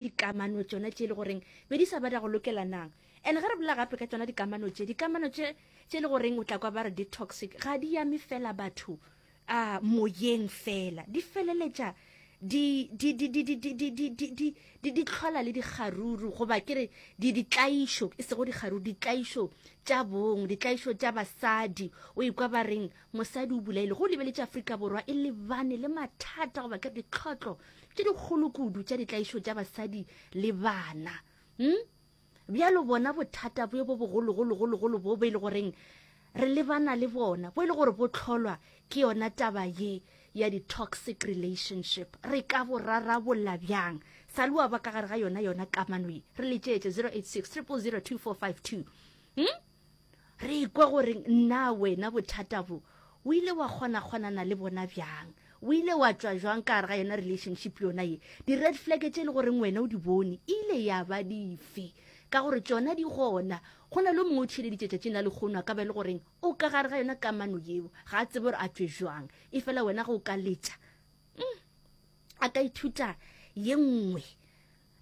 dikamano tšona tše e le goreng be di sa bada go lokelanang and ge re bolela gape ka tšona dikamano tše dikamano tše tše e le goreng o tla kwa ba re di toxic ga di yame fela batho a moyeng fela di feleletša di di di di di di di di di di di di tlhola le dikgaruru goba ke re di ditlaišo e sego dikgaruru ditlaišo tša bong ditlaišo tša basadi o ikwa ba reng mosadi o bolaile go lebeletše afrika borwa e lebane le mathata goba ke re ditlhotlo tše dikgolo kudu tša ditlaišo tša basadi le bana hm? bjalo bona bothata bo bo bogologologologolo bo bo e le goreng re lebana le bona bo e le gore bo tlholwa ke yona taba ye ya di-toxic relationship re ka bo rarabolla bjang sa le wa ba ka gare ga yona yona kamano ye re letšeetse 086 300 2452 hmm? Re ikwa gore na wena bothata bo o ile wa kgonakgonana le bona bjang? O ile wa tšwa jwang ka gare ga yona relationship yona ye? Di-red flag tše e le goreng wena o di bone e ile ya ba dife? Ka gore tšona di gona. Go na le o mongwe o theeleditše tšatšing la lekgono a ka ba e le goreng o ka gare ga yona kamano yeo, ga a tsebe gore a tšwe jwang. E fela wena ge o ka letša, a ka ithuta ye nngwe.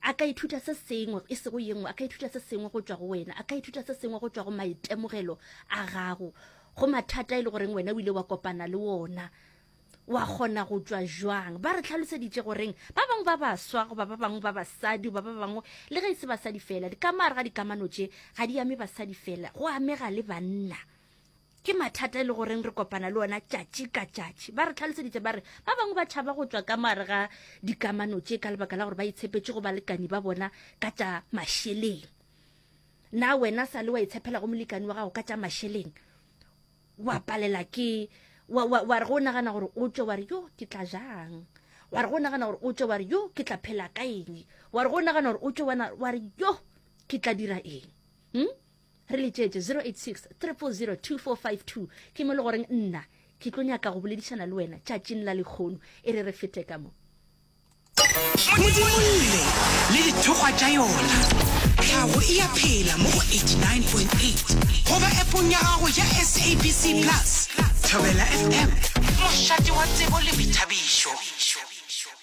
A ka ithuta se sengwe, e sego ye nngwe. A ka ithuta se sengwe go tšwa go wena. A ka ithuta se sengwe go tšwa go maitemogelo a gago, go mathata e le goreng wena o ile wa kopana le wona. Wa kgona go tšwa jwang? Ba re tlhaloseditše goreng ba bangwe ba baswa goba ba bangwe ba basadi goba ba bangwe le ge e se basadi fela, dikamare ga dikamano tše ga di ame basadi fela, go amega le banna. Ke mathata e le goreng re kopana le ona tšatši ka tšatši. Ba re tlhaloseditše ba re ba bangwe ba tšhaba go tšwa ka moare ga dikamano tše ka lebaka la gore ba itshepetše go balekani ba bona ka tša mašeleng. Na wena sa le wa itshepela go molekani wa gago ka tša mašeleng? Wa palela ke wa, wa, wa re go nagana gore o tšwe wa re yo ke tla jang wa re go nagana gore o tšwe wa re yo ke tla phela ka eng wa re go nagana gore o tšwe wa re yo ke tla dira eng hmm? re letšetše 0863002452 ke mo le goreng nna ke tlo nyaka go boledišana le wena tšatšing la lekgono e re re fete ka mo modimo lle le dithokgwa tša yona tlhago e ya phela mo go 89.8 goba epong ya gago ya sabc plus thobela fm mošate wa tsebo le boithabišo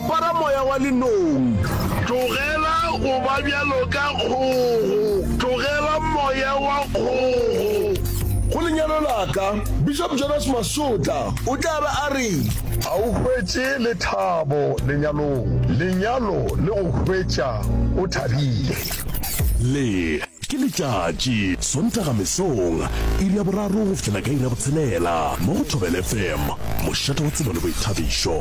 Para moya wa lenong. Tlogela go ba bjalo ka kgogo. Tlogela moya wa kgogo. Go lenyalo la ka. Bishop Jonas Masotla o tla be a re. A o hwetše lethabo lenyalong. Lenyalo le go hwetša o thabile. Le. Ke letšatši, Sontaga mesong, iri ya boraro go fihlela ka iri ya botshelela, mo go Thobela FM, mošate wa tsebo le boithabišo.